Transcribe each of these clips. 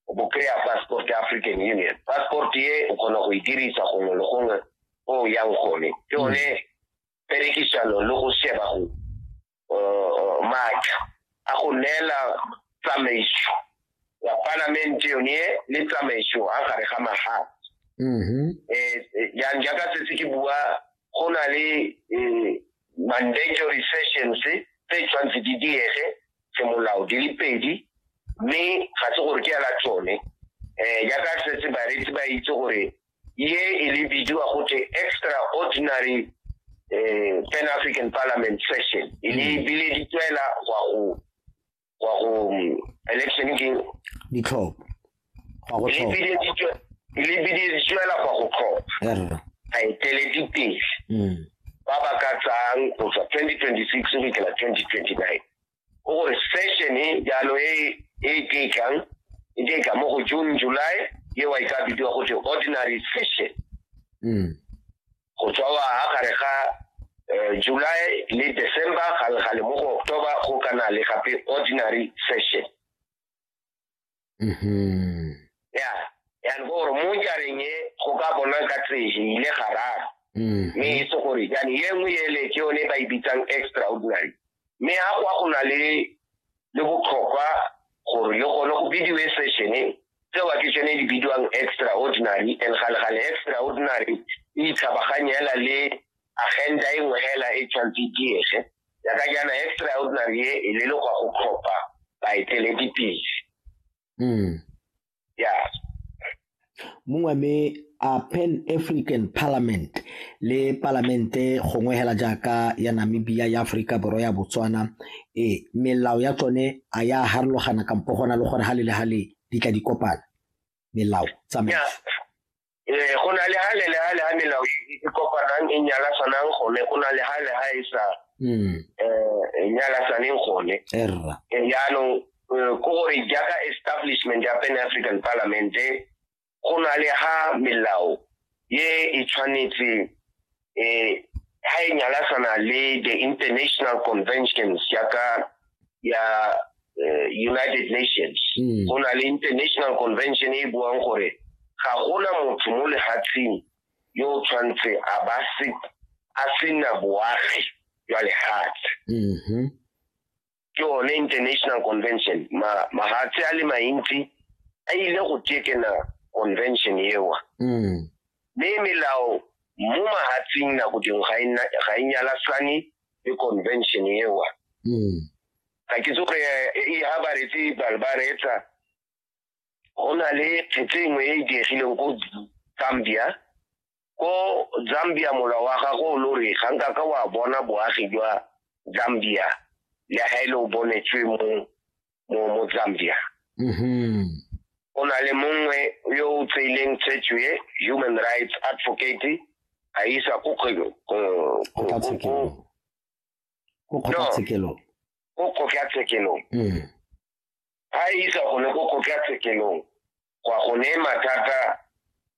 o bo kry-a passport ya african union passport e o kgona go e dirisa gongwe le gongwe o yang gone ke mm. one perekisano le go sheba go uh, maatla a go neela tsamaiso ya palamente yone le tsamaiso a gare ga magae mm-hmm. eh, eh, yang jaaka setse ke bua go na le eh, mandatory sessions tse tshwanetse di diege semolao di le pedi mme ga se gore ke ya la tsone um jaaka setse bareetsi ba itse gore ye e le bidiwa gote extraordinary um pan african parliament session e le mm. bile di tswela gwa go gwa go mm, election ke ditlhopho go go tlhoka le biditswela go go tlhoka a eteledi pele mm. ba ba ka tsang go tswa 2026 go fitlhela 2029 go gore session e jalo e e ke tlang e ke tla mo go June July ye wa ka bidiwa go tse ordinary session mm go tswa wa ha gare ga eh, July le December ga le ga le mo go October go kana le gape ordinary session Mhm. ya yani go gore mo jareng e go ka bona ka tsege ile gararo Mhm. mme e se gore yani ye nngwe ele ke yone ba e bitsang extraordinary mme ga kwa go na le le botlhokwa gore le gone go bidiwe session tseo ke tsone di bidiwang extraordinary and galegale extraordinary e itlhabaganyela le agenda e nngwe hela e tshwanetse diege jaaka jaana extraordinary e e le le go go tlhopha baeteledipele mm. ya mongwe me a pan african parliament le palamente gongwe hela jaaka ya namibia ya aforika borwa ya botswana e melao ya tsone a ya harologana kampo gona le gore ga le le ga le di tla di kopana melao tsamaiso eh go na le ha le le ha le ha melao e kopanang e nyala sanang gone go na le ha le ha e sa mm eh e nyala saneng gone erra eh, jaanong eh, ko gore jaaka establishment ya pan african parliament go na le ha melao ye e tshwanetse eh ha e nyalasana le the international conventions ya ka ya eh, united nations mm. go na le international convention e buang gore ga gona motho mo lehatsheng yo o tshwanetse a ba se a sena boagi jwa lehatshe mm-hmm. ke one international convention mahatshe a le mantsi a ile go tekena convention ewa mm. mme melao mo mahatsing nako dingwe ga e nyalasane le convention ewa mm. ga ke tsoge e ha ba retse bale ba reetsa go na le phetse nngwe e e diegileng ko gambia ko zambia mola wa gago o lo re ga nka ka wa bona boagi jwa zambia le ga e le o bonetswe mo mo zambia mm-hmm. o na le mongwe yo o tseileng tshetso e human rights advocate a isa ko kgotlatshekelo ko kgotlatshekelong mm. a isa gone ko kgotlatshekelong gwa go ne mathata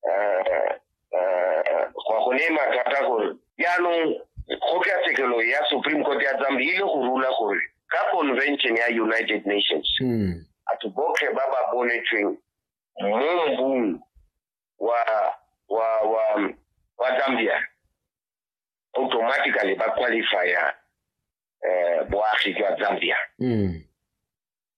eh, eh, gwa go ne mathata gore jaanong kgotlatshekelo ya supreme court ya tsambe ile go rula gore ka convention ya united nations hmm. batho botlhe ba ba bonetsweng mo mbung wa wa wa wa zambia automatically ba qualifya eh, boagi jwa zambia mm.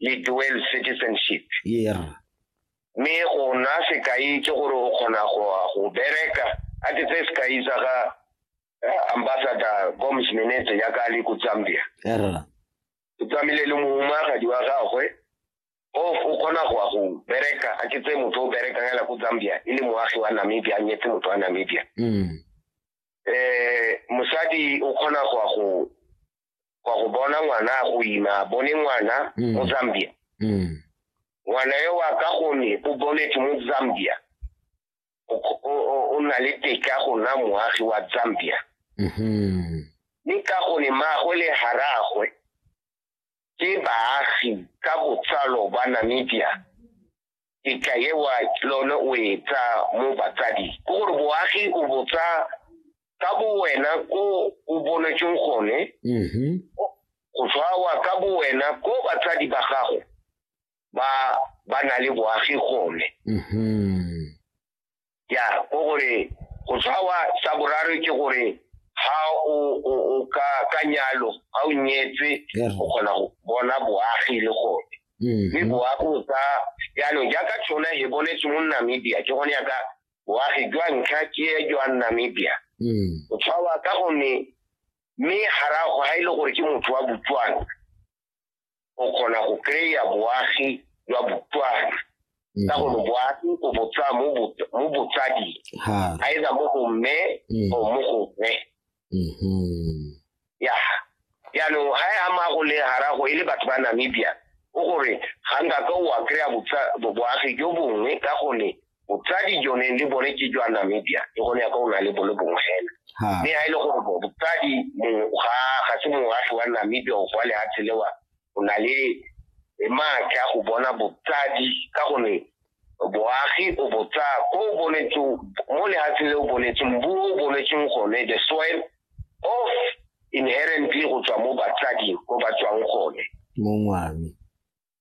le dual citizenship yeah mme go nna sekai ke gore o kgona go bereka a ke tse sekai sa ga eh, ambassador gomes menete ya ka le ko zambia o tsamile le mohumaagadi wa gagwe o o kgona go go bereka a ke tse motho o berekang ela ko zambia e le moagi wa namibia a nyetse motho wa namibia um mosadi o kgona go go kwa go bona ngwana a go ima a bone ngwana Mm. mo zambia Mm. ngwana yo wa ka gone o boletse mo zambia o kgo- o- o- o na le teka go nna moagi wa zambia Mhm. mme ka gone maagwe le haragwe ke baagi ka botsalo ba namibia e ka ewa ke lone o e tsa mo batsadi ke gore boagi o botsa ka bo wena ko o bonetseng gone mm-hmm. go tshwawa ka bo wena ko batsadi ba gago ba ba na le boagi gone mm-hmm. ya ko gore go tshwawa sa boraro ke gore ha o o o ka ka nyalo ha o nyetse Yeah. o kgona go bona boagi le gone mme Mhm. boagi o ka jaanong jaaka tshona e bonetse mo namibia ke gone yaka boagi jwa ntlha ke jwa namibia Mm. o tshwawa ka gonne mme garago ga e le gore ke motho wa botswana o kgona go kry-a boagi jwa botswana ka mm. gore boagi o botsa mo botsading either mo go mme mm. or mo go mme mm-hmm. ya jaanong ga e ama go le garago e le batho ba namibia o gore ga nka ka o a kry-a boagi jo bongwe ka gone botsadi jone le bone ke jwa namibia le gone ya ka o na le bone bongwe fela mme ga e le gore botsadi ga ga se moagi wa namibia o kwa lehatshe lewa o na le maatla go bona botsadi ka gone boagi o botsa ko o bonetseng mo lehatshe le o bonetseng bu o bonetseng gone the soil of inherently go tswa mo batsading ko ba tswang gone mongwami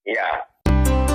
ya yeah.